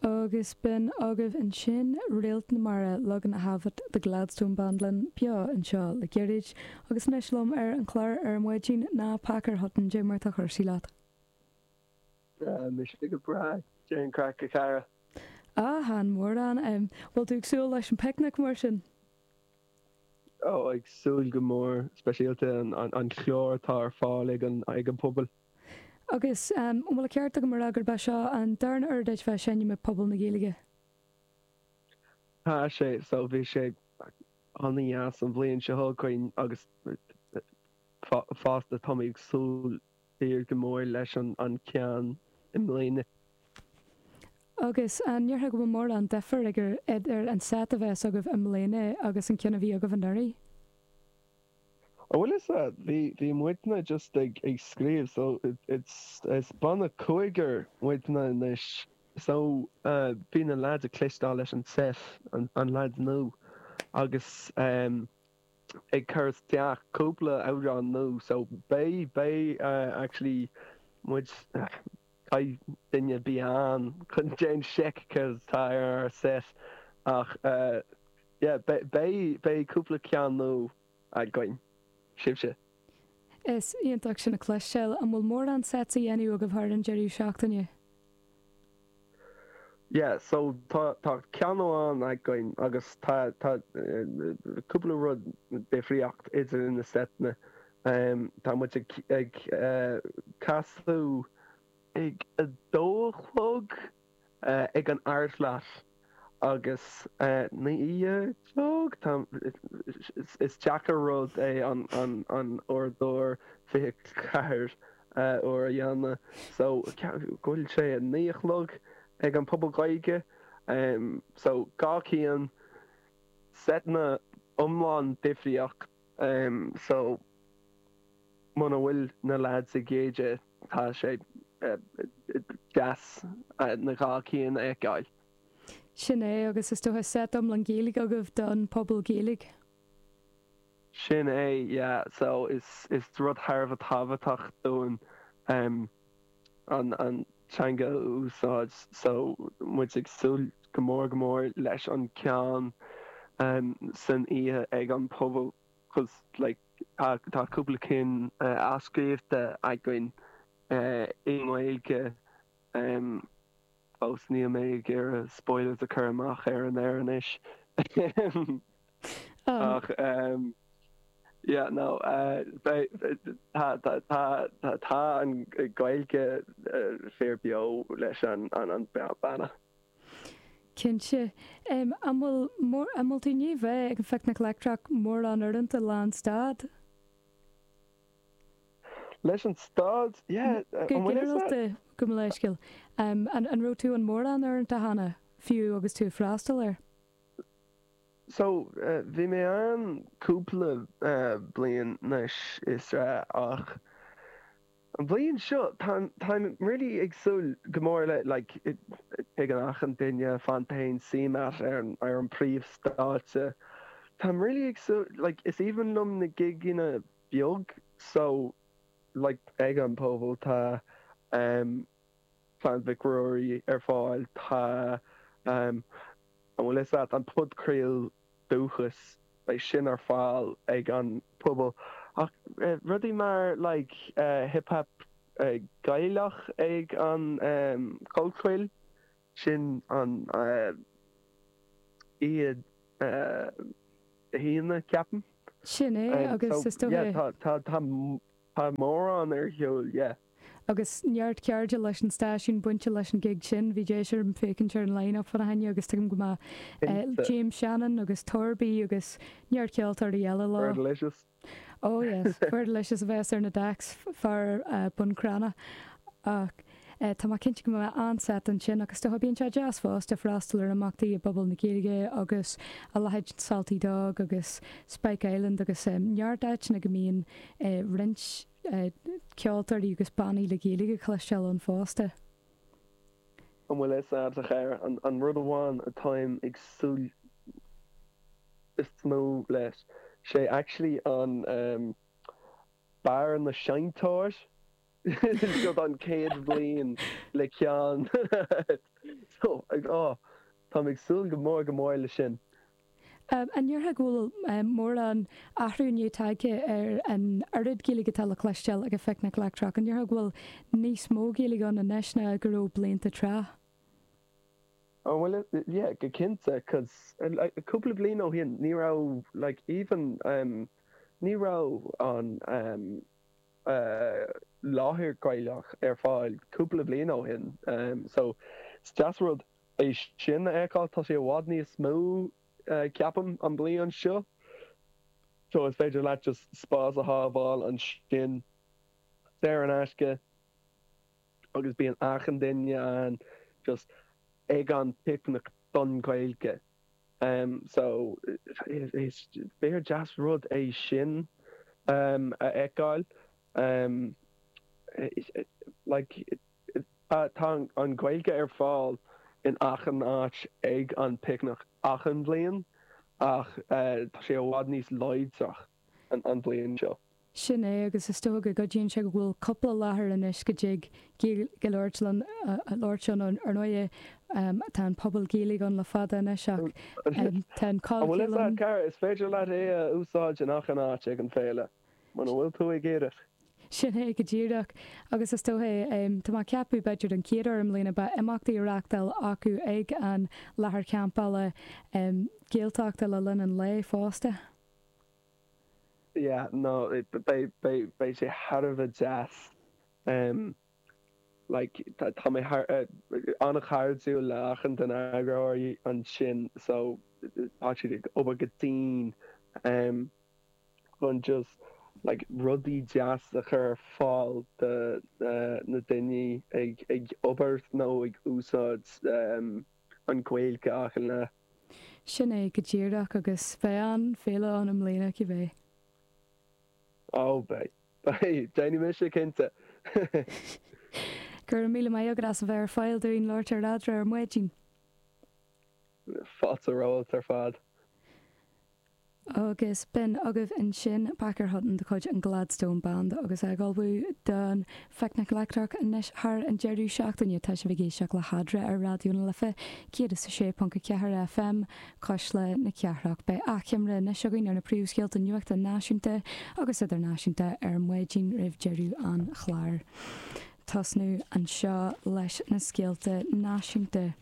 Agus b'in agaibh ansin Réalt na Mara, Log na hAbhat, The Gladstone Band linn beo anseo le gairid, agus anois liom ar an chlár ar an maidin ná Pacair Hutton, cad é mar atá cúrsaí leat. Tá mise go breá, cad é an craic a chara! Ah, chan mórán. Bhfuil tú ag súil leis an picnic mar sin? Oh, ag súil go mór, speisialta an chlár atá ar fáil ag an puball. Agus an bhfuil an ceart agam a rá gurb é seo an darna uair duit bheith ag seinm ag Puball na Gaeilge? Tá sé, so bhí sé an-dheas an bhliain seo chuaigh tharainn agus fosta táimid ag súil siar go mór leis an ceann i mbliana. Agus an ndéarfá go bhfuil mórán difir idir an set a bheas agaibh i mbliana agus an ceann a bhí agaibh anuraidh? An bhfuil fhios a'd, bhí, bhí muidne just ag, ag scríobh so it's, is banna cúigear muidne anois so bhí na lads ag cloisteáil leis an seit, an, an lads nua agus ehm ag cur isteach cúpla amhrán nua so beidh, beidh actually muid, caithfidh daoine bheith ann chun déan seic céard atá ar ár seit ach eh. Yeah, beidh, beidh cúpla ceann nua againn. Sibhse? Is iontach sin a cloisteáil. An bhfuil mórán sets á dhéanamh agaibh thar an deireadh seachtaine? Yeah, so tá, tá ceann amháin againn agus tá, tá cúpla rud difríocht idir na seiteanna. Tá muid ag, ag casadh ag a dó a chlog. ag an ArtLot agus naoi a chlog. Is deacair rud é an uaireadóir 24 uair a dhéanamh so ceapaim go bhfuil sé a naoi a chlog ag an Phuball Gaeilge so dhá cinn, seiteanna iomlán difríocht. Um so muna bhfuil na lads ag géilleadh tá sé deas na dhá cinn a fheiceáil. Sin é, agus is dócha set iomlán Gaeilge agaibh don Puball Gaeilge. Sin é, yeah, so is rud thar a bheith tábhachtach dúinn. an teanga a úsáid so muid ag súil go mór go mór leis an ceann san oíche ag an bpuball cos like tá cúpla cinn athscríobhta againn i nGaeilge. Fós níl mé ag iarraidh spoilers a chur amach ar an aer anois. Ach yeah no tá an Gaeilge fíor beo leis an beanna. Cinnte. An bhfuil moltaí ar bith ag an Phicnic Leictreach, mórán uaireanta lán stad? Leis an stáit, yeah, gabh mo leithscéal. An raibh tú ann mórán uaireanta cheana, fiú agus tú a' freastal air? So, bhí mé ann cúpla bliain 'nois is a, ach an bhliain seo, táim really ag súil go mór le, like, bíonn achan duine, fanta fhéin, suim a'at ar an príomh stáitse. Táim really ag súil, like, is aoibhinn liom na gigeanna beag so like ag an bpobal. Tá Clann Mhic Ruairí ar fáil, tá an bhfuil 'fhios a't, an podchraol Dúchas, beidh sin ar fáil ag an Puball. Ach rudaí mar like hip hap Gaelach ag an Chollchoill. Sin ann Dé hAoine, ceapaim. Sin é, agus is dócha. Tá mórán ar siúl, yeah. Agus neart cairde leis an stáisiún bainte leis an gig sin. Bhí deis orm féachaint ar an line-up fá na hAoine agus tuigim go mbeidh James Shannon agus Torby agus neart ceoltóirí eile leo. We're delicious. Oh yes, fuair delicious a bheas ar na decks fear Bun Cranncha ach tá mé cinnte go mbeidh an-seit ansin ach is dócha bíonn sé deas fosta freastal ar imeachtaí i bpobal na Gaeilge agus a leithéid Salty Dog agus Spike Island agus neart áiteanna go mbíonn roinnt ceoltóirí agus bannaí le Gaeilge le cloisteáil ann fosta. An bhfuil fhios a't, a chara, an rud amháin atáim ag súil is mó leis, sé actually an ehm. Beár na Seinnteoir. Seo an chéad bhliain le ceann so ag áth. Táim ag súil go mór go mór le sin. An ndéarfá go bhfuil mórán athruithe tagtha ar an oiread Gaeilge atá le cloisteáil ag an Phicnic Leictreach? An ndéarfá go bhfuil níos mó Gaeilge ann anois ná mar a bhí blianta tráth? Ó bhuel, yeah, go cinnte, 'cause cúpla bliain ó shin, ní raibh, like, even, ní raibh an láthair Ghaelach ar fáil cúpla bliain ó shin, so is deas rud, é sin a fheiceáil. Tá sé i bhfad níos mó, ceapaim, an bliain seo. So is féidir leat just spás a shábháil ansin, saor in aisce, agus bíonn achan duine ann just ag an bpicnic don Ghaeilge. So is fíordheas rud é sin a fheiceáil. Like. Tá an Ghaeilge ar fáil in achan áit ag an bPicnic achan bhliain ach tá sé i bhfad níos láidre an bhliain seo. Sin é agus is dócha go gcuidíonn sé go bhfuil cúpla láthair anois go dtig Gaeilge a labhairt ann. Ar ndóigh, tá an Puball Gaeilge ann le fada anois ach tá an cáil chéanna ann. Is féidir leat é a úsáid in achan áit ag an bhféile. Muna bhfuil tú ag iarraidh. Sin é go díreach. Agus is dócha é. Tá mé ag ceapadh, b'fhéidir an chéad uair i mbliana, beidh imeachtaí á reáchtáil acu ag an láthair champála Gaeltachta le linn an lae fosta. Yeah, no, beidh sé thar a bheith deas. Like tá mé an-chairdiúil le achan de na heagróirí ansin so tá siad ag obair go dian ehm chun just like rudaí deas a chur ar fáil do na daoine ag ag obair nó ag úsáid ehm an Gaeilge achan lá. Sin é go díreach agus beidh an Ghaeilge ann i mbliana cibé. Ó beidh. Beidh, déanfaidh mise cinnte! Go raibh míle maith agat as a bheith ar fáil dúinn labhairt ar Eadra ar maidin. Fáilte romhat ar fad. Agus b'in agaibh ansin Baker Hutton de chuid an Gladstone Band agus é ag ullmhú don Phicnic Leictreach anois thar an deireadh seachtaine. Tá sibh ag éisteacht le hEadra ar Raidió na Life 106.4 FM, Cuisle na Cathrach. Beidh achoimre anois againn ar na príomhscéalta nuachta náisiúnta agus idirnáisiúnta ar maidin roimh deireadh an chláir. Tosnóidh anseo leis na scéalta náisiúnta.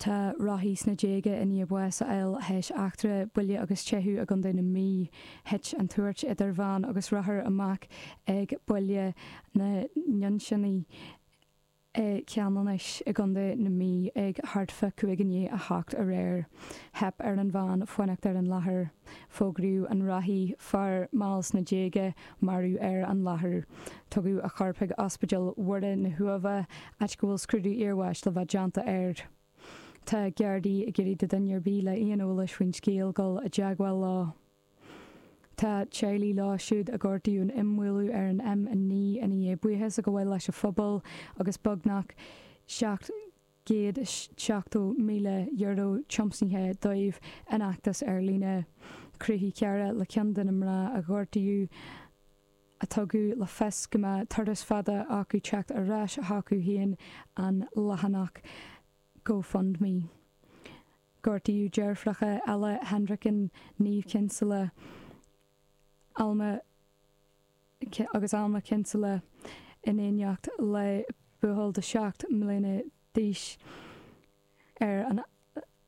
Tá rothaí sna déaga i ndiaidh báis a fháil tar éis eachtra buille agus teitheadh i gContae na Mí. Thit an tuairt idir veain agus rothar amach ag Baile na nDuinnseannaí. I gCeanannais i gContae na Mí ag thart fá cúig i ndiaidh a hocht aréir, theip ar an veain fanacht ar an láthair. Fógraíodh an rothaí, fear mall sna déaga, marbh ar an láthair. Tugadh a chorp chuig Ospidéal Mhuire na hUaimhe, áit go bhfuil scrúdú iarbháis le bheith déanta air. Tá Gardaí ag iarraidh ar dhuine ar bith le aon eolas faoin scéal dul i dteagmháil leo. Tá teaghlaigh leo siúd a gortaíodh in imbhualadh ar an M9 i ndiaidh buíochas a ghabháil leis an phobal agus beagnach €770,000 tiomsaithe dóibh in fheachtas ar líne, Chruthaigh cara, le ceann de na mná a gortaíodh, a tugadh le fios go mbeadh turas fada acu le teacht ar ais chucu féin, an leathanach GoFundMe. Gortaíodh deirfiúracha Ella Hendricken, Niamh Kinsella, Alma, agus Alma Kinsella in éineacht le buachaill de 7 mbliana d'aois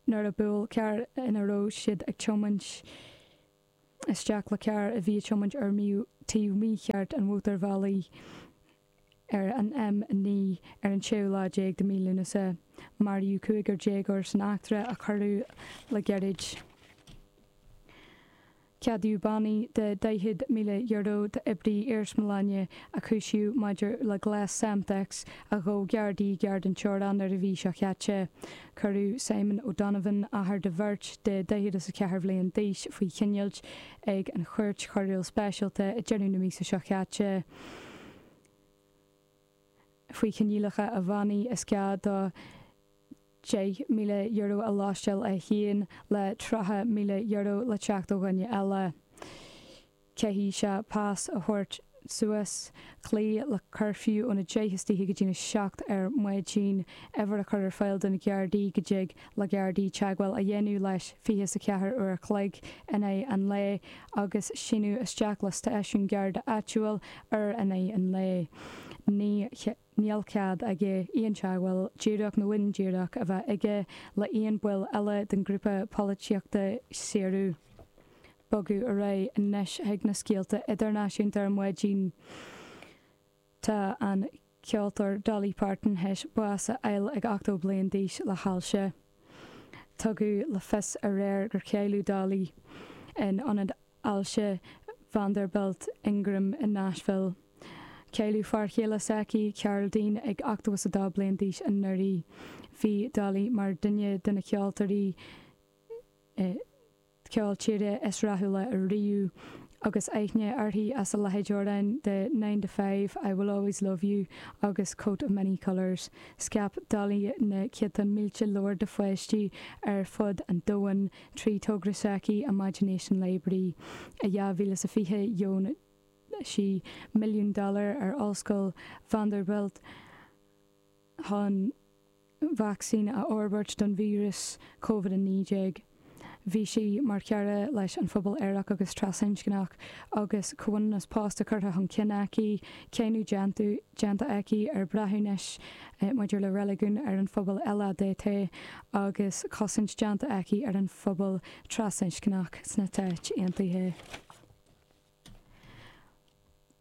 nuair a bhuail carr ina raibh siad ag tiomáint isteach le carr a bhí ag tiomáint ar taobh mícheart an mhótarbhealaigh ar an M9 ar an tséú lá déag de mhí Lúnasa. Maraíodh cúigear déagóir san eachtra a cuireadh le gairid. Ceadaíodh bannaí de €40,000 d'oibrí iarsmalainne a cúisíodh maidir le gléas Semtex a d'aimsigh gardaí gar don teorainn an mhí seo chaite. Cuireadh Simon O'Donovan, athair de bheirt de daichead is a ceathair bhliain d'aois, faoi choinneáil ag an Chúirt Choiriúil Speisialta ag deireadh na míosa seo caite faoi choinníollacha a bhannaí is gá dó €10,000 a lóisteáil é féin le €30,000 le teacht ó dhuine eile. caithfidh sé pas a thabhairt suas cloí le cuirfiú ón 10 istoíche go dtí an 7 ar maidin uimhir a chur ar fáil do na Gardaí go dtig le Gardaí teagmháil a dhéanamh leis 24 uair a chloig in aghaidh an lae agus síniú isteach le stáisiún Garda áitiúil uair in aghaidh an lae. Ní níl cead aige aon teagmháil, díreach nó indíreach, a bheith aige le haon baill eile den ghrúpa polaitíochta Saoradh. Bogadh ar aghaidh anois chuig na scéalta idirnáisiúnta ar maidin. Tá an ceoltóir Dolly Parton théis bás a fháil ag 80 bliain d'aois le hailse. Tugadh le fios aréir gur cailleadh Dolly in ionad ailse Vanderbilt Ingram i Nashville. Cailleadh fear chéile s'aici, Carl Dean, ag 82 bliain d'aois anuraidh. Bhí Dolly mar dhuine de na ceoltóirí ceol tíre is rathúla riamh agus aithne uirthi as a leithéid d'amhráin de Nine to Five, I Will Always Love You agus Coat of Many Colours. Scaip Dolly na céadta mílte leabhar do pháistí ar fud an domhain. Trí togra s'aici, Imagination Library, i 2020 dheon sí milliún dollar ar Ollscoil Vanderbilt chun vacsaín a fhorbairt don víreas COVID-19. Bhí sí mar chara leis an phobal aerach agus trasinscneach agus comhionannas pósta curtha chun cinn aici, cáineadh déanta aici ar breithiúnais maidir le reiligiún ar an phobal LADT agus cosaint déanta aici ar an phobal trasinscneach sna Stáit Aontaithe.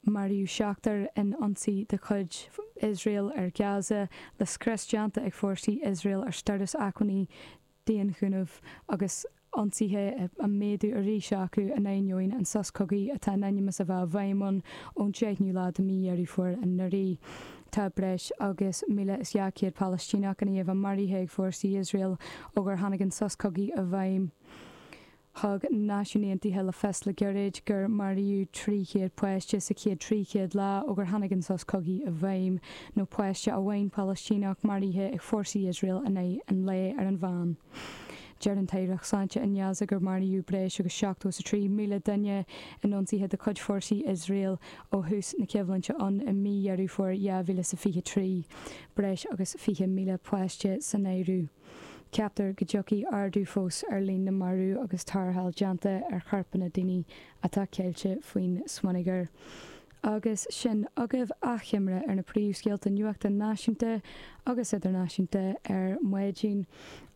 Maraíodh seachtar in ionsaí de chuid Iosrael ar Gaza, le scrios déanta ag fórsaí Iosrael ar stóras acmhainní daonchúnamh agus ionsaithe á méadú arís acu in ainneoin an sos cogaidh atá in ainm is a bheith i bhfeidhm ann ón 10ú lá de mí Dheireadh Fómhair anuraidh. Tá breis agus 1,200 Palaistíneach i nGaza maraithe ag fórsaí Iosrael ó gur tháinig an sos cogaidh i bhfeidhm. Thug Náisiúin Aontaithe le fios le gairid gur maraíodh 300 páiste sa chéad 300 lá ó gur tháinig an sos cogaidh i bhfeidhm, nó páiste amháin Palaistíneach maraithe ag fórsaí Iosrael in aghaidh an lae ar an mheán. Deir an tAireacht Sláinte i nGaza gur maraíodh breis agus seachtó is a trí míle duine in ionsaithe de chuid fórsaí Iosrael ó thús na coimhlinte ann i mí Dheireadh Fómhair 2023, breis agus fiche míle páiste san áireamh. Ceaptar go dtiocfaidh ardú fós ar líon na marbh agus tarrtháil déanta ar chorpanna daoine atá ceilte faoin smionagar. Agus sin agaibh achoimre ar na príomhscéalta nuachta náisiúnta agus idirnáisiúnta ar maidin.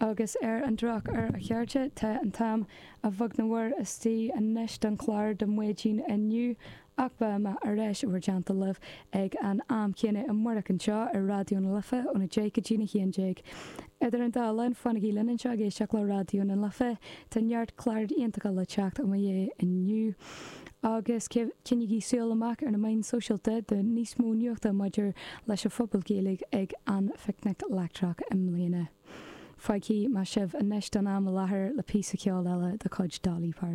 Agus ar an drochuair, a chairde, tá an t-am a bheag nó a mhór istigh anois don chlár do maidin inniu. Ach beidh mé ar ais i bhur dteannta libh ag an am céanna amárach anseo ar Raidió na Life ón 10 go dtí'n 11. Idir an dá linn, fanaigí linn anseo ag éisteacht le Raidió na Life, tá neart cláir iontacha le teacht i mo dhiaidh inniu! Agus coinnígí súil amach ar na meáin sóisialta do níos mó nuachta maidir leis an Phuball Gaeilge ag an Phicnic Leictreach i mbliana. Fágfaidh mé sibh anois don am i láthair le píosa ceoil eile de chuid Dolly Parton.